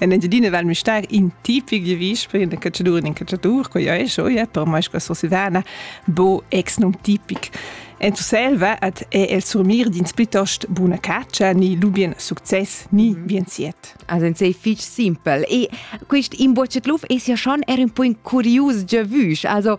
En Engiadina val Müstair in tipic giavisch per in cacciadur e in cacciatur, quei ei scho, ja, per mai sco Sursilvana, bo ex num tipic. En Selva hat è el surmir dins plitost buna caccia ni lubien success ni mhm. bien siet. Also sei fich simpel. E quist imbocet luf es ja schon er un po in curius giavüsch. Also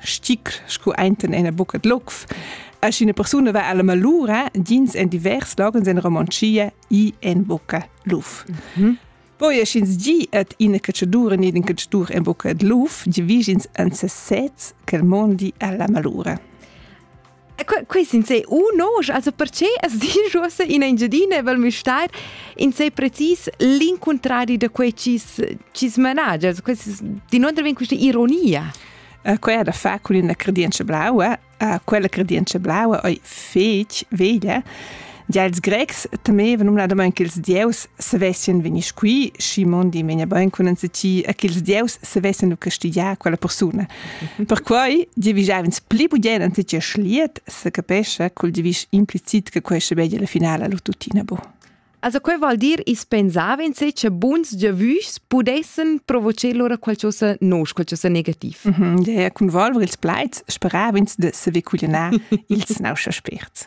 sticr scu enten ena bucca d'locf. As ina persuna va alla malura, dins en divers logens en Romontschia i en bucca luf. Mm -hmm. Poi es ins gi et ina cacciadura ni in cacciatur en bucca d'luf, divigins an sesez quel mondi alla malura. Quei sin se uno, also perché as dici uossa in Engiadina val müstar in sei precis l'incontrari da quei ci ci smanagia, also questi di non vien questa ironia. Uh, quella da fa con una credienza blaua, uh, quella credienza blaua ei fetg veglia Gia ils Grecs temevan numnadamain ch'ils dieus savessien vegnir qui, schi mondi vegnia bain cun enzatgi e ch'ils dieus savessien castigiar quella persuna. Perquai giavischav'ins pli bugen enzatgi schliet, se capescha cul giavisch implicit che quei schabegia la finala lu tuttina bu. Also quei vuol dir, ins pensava insé che buns giavischs pudessen provocer lura qualcosa nos, qualcosa negativ. Mm -hmm. Ja, cun volver ils plaids sperava ins de saver cuglienar ils nauscha spirts.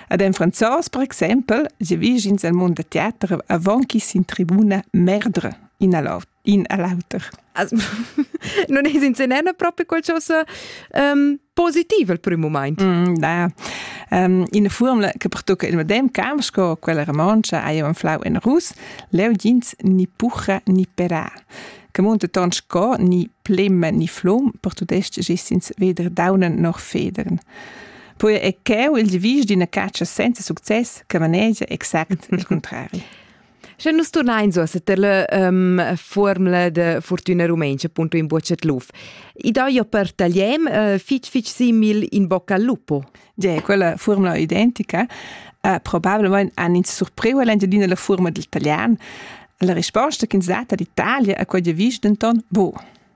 Ad en franzos, per exempel, se vigins el mond da teater avon chi sin tribuna merdre in a l'auter. non es in senena propi qualcosa um, positiv al primo moment. Mm, da. Um, in formula che pertocca il medem camp sco quella romancia hai un flau in rus, leu jins ni pucha ni pera. Che monte ton sco ni plemme ni flum per tudest gis ins weder daunen noch federn. Poi è cheu il devis d'ina catscha senza success che manegia exact il contrari. Sche nus turnain so setter la um, formula de fortuna rumenca appunto in bocet luf. I dà jo per tagliem uh, fitch fitch simil in bocca al lupo. Ja, quella formula identica uh, probabilmente han ins surpriu all'Engiadina la forma del taglian. La risposta che ins data d'Italia a quella vis denton bo.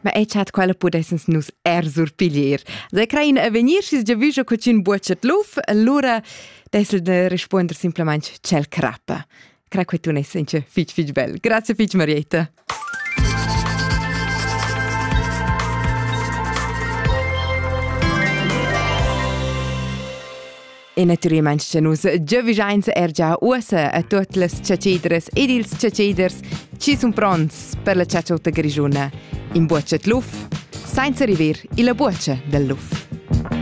Ma e chat quella pudessens nus er surpiglier. Se crein a vegnir schis giavüscho cocin buocet luf, allura dessel de risponder simplemente cel crappa. Cra che tu ne senche fich fich bel. Grazie fich Marietta. E naturalmein che nus giavischein er gia ussa a tuot las chatschidras ed ils chatschiders chi sun pronts per la chatschota grischuna. In buochet luf, sainza river illa buocha del luf.